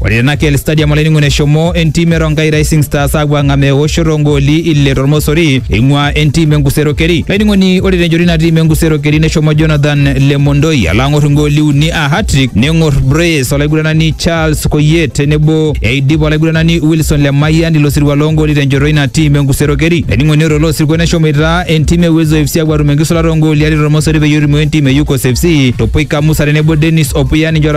Ore tena KL Stadium olainining'oni eshomo entim e Rongai Rising Stars aapuo ang'amaa eoshoto oongooli ile tormosori eing'ua entim e Nkusero Keri. Olainining'oni ore tenchoto ina tim e Nkusero Keri neshomo Jonathan Lemondoi alo ang'or ingooli uni aa hat-trick neng'or brace olaiguranani Charles Koyet tenebo eidip olaiguranani Wilson Lemayian ilo sirua loongooli tenchoto ina tim e Nkusero Keri. Olainining'oni ore ilo sirua neshomoita entim e Uwezo FC aapuo atum enkisulata oongooli are tormosori peyie erumoo entim e Yukos FC Topoika Musa tenebo Dennis Opuya ninche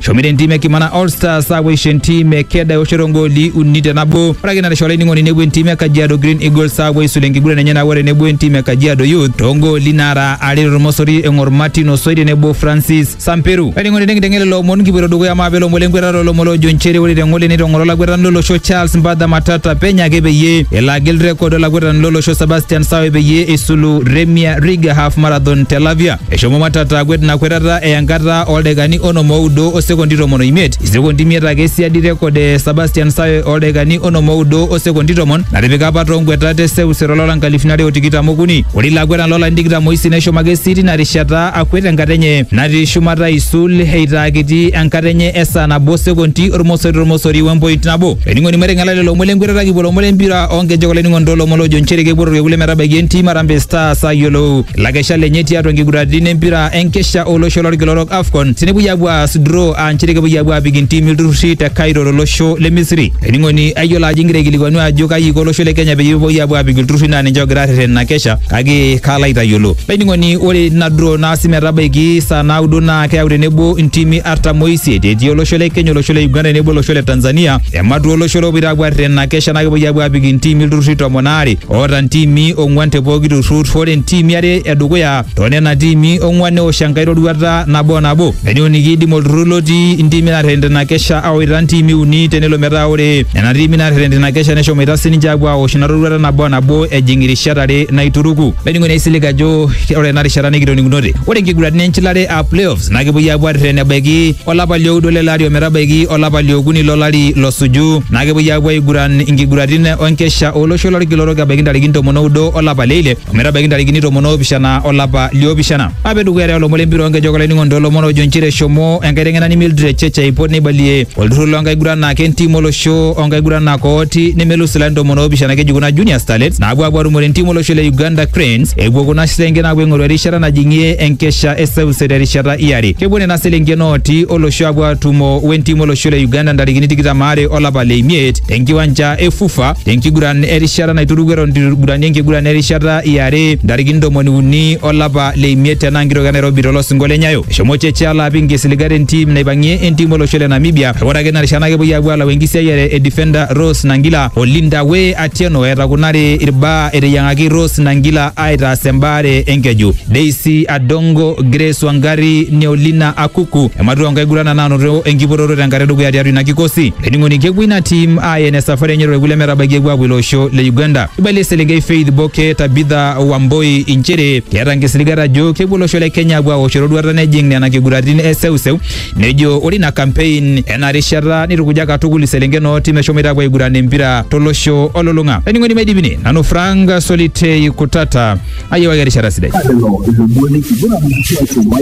Shomire entiim e Kimana All Stars aapuo aisho entiim e Keda eoshoto ogooli uni te nabo. Ore ake ina naisho olainining'oni nepuo entiim e Kajiado Green Eagles aapuo aisulu enkiguran enye nabo tenebo entiim e Kajiado Youth toogooli naara are tormosori eng'or Martin Osoi tenebo Francis Samperu. Olainining'oni nikinteng'en lelo omon kipuoito dukuya maape ilomon lenkwetata olomon loojo nchere ore teng'ole neitong'oro olakwetani lolosho Charles Mbadha Matata penyo ake peyie elo agil rekod olakwetani lolosho Sebastian Sawe peyie eisulu Remia Riga Half Marathon te Lavia. Eshomo Matata akwet ina kwetata eya enkata ooldaikani onom oudo o sekondi tomon oimiet, isekondi imiet ake siadi rekod e Sebastian Sawe ooldaikani onom oudo o sekondi tomon natipika apa too nkwetat e seuseu to lari nkalifuni are o tikitam okuni. Ore ilo akwetani loo larin tikitam oisiet neshomo ake sii tina rishata akwet enkata enye natii shumata aisul eitaa kiti enkata enye e saa nabo o sekondi ormosori tormosori we mpoint nabo. Olainining'oni maiteng'ela lelo omon le nkwetata kipuo lomon le mpira oo nkejek olainining'oni too lomon loojo nchere kepuo Orkekun le metabaiki entim Harambee Stars ayiolou lakesha lenye tiatua nkiguraritin empira enkesha olosho lorkila orok AFCON tenepuoi apuo aas draw aa nchere kepuoi apuo apik intimi ilturrurri te Cairo tolosho le Misri. Ening'oni ayiolo ajo ingira aikilikuanu ajo kaji iko olosho le Kenya peyie epuoi apuo apik ilturrurri naa ninche ogira arreten ina kesha kake kaalo aitayiolo. Ening'oni ore ina draw naasi metabaiki saa naudo naa keyau tenebo intimi artam oisiet etii olosho le Kenya olosho le Uganda tenebo olosho le Tanzania ematua olosho lopoito apuo arreten ina kesha naa kepuoi apuo apik intimi ilturrurri tomon aare oota ntiimi ong'uan te pooki turrur ore ntiimi are edukuya too nena tiimi ong'uan neosh enkae roruata nabo nabo nenyoni kiidim olturrur lotii ntiimi naarreten tina kesha awaita ntiimi uni tenelo metaa ore nena tiimi naarreten tina kesha neshomoita sininche aapuo aosh ina roruata nabo nabo ejing irishat are naituruku. Olainining'oni aisilig ajo ore ena rishata nikitoning'unote ore nkiguraritin enchilare aa playoffs na kepuoi aapuo arreten ebaiki olapa lioudo lele ari ometabaiki olapa liokuni lolari losuju na kepuoi aapuo aiguran inkiguratin onkesha olosho lolkila orok ebaiki ntarikini tomon oudo olapa leile ometabaiki ntarikini tomon oopishana olapa liopishana ape dukuya te olomon lempira onkejek olainining'oni toolomon ojo nchere eshomo enkaiteng'enani Mildred Cheche aipot neibalie olturrur loonkaguranak entim olosho onkaguranak ooti nemelus ilarin tomon oopishana keji kuna junior starlets naapuo aapuo atumore entim olosho le Uganda Cranes epuo kuna selenken aapuo aing'oru erishata najing'ie enkesha e Olosho te rishata iare. Kepuo nena selenken ooti olosho apuo atumo wentim olosho le Uganda ntarikini tikitam aare olapa le imiet tenkiwanja e Fufa tenkiguran erishata naituruku eton itu igurani enkiguran erishata iare ntarikini ntomoni uni olapa le imiet tenaa nkitok e Nairobi tolosingo le Nyayo. Eshomo Cheche alo apik nkisiligat entim naipang'ie entim olosho le Namibia kake ore ake tina rishata naa kepuoi apuo alau enkisiayiare e defender Rose Nangila o Linda Way Atieno etakunari irbaa eteyiang'aki Rose Nangila aitaas embaare enkeju. Daisy Adongo, Grace Wangari, Neolina Akuku ematua nkaigurana naanoto enkipototo tenkata edukuya tiatua ina kikosi. Olainining'oni kepuo ina tim aaya ina safari enye torkekun lemetabaiki epuo aapuo ilo osho le Uganda. Eibalie eselenkei Faith Boke Tabitha Wamboi inchere keeta nkisiligat ajo kepuo olosho le Kenya apuo aosh eroruata nejing nena kiguratin e seuseu Nejo ore ina campaign ena rishata nitukuja katukul iselenken ooti meshomoita apuo aiguran empira tolosho olulung'a. Laining'oni maidipini nanu Frank Solitei Kutata ayiewaki erishata sidai.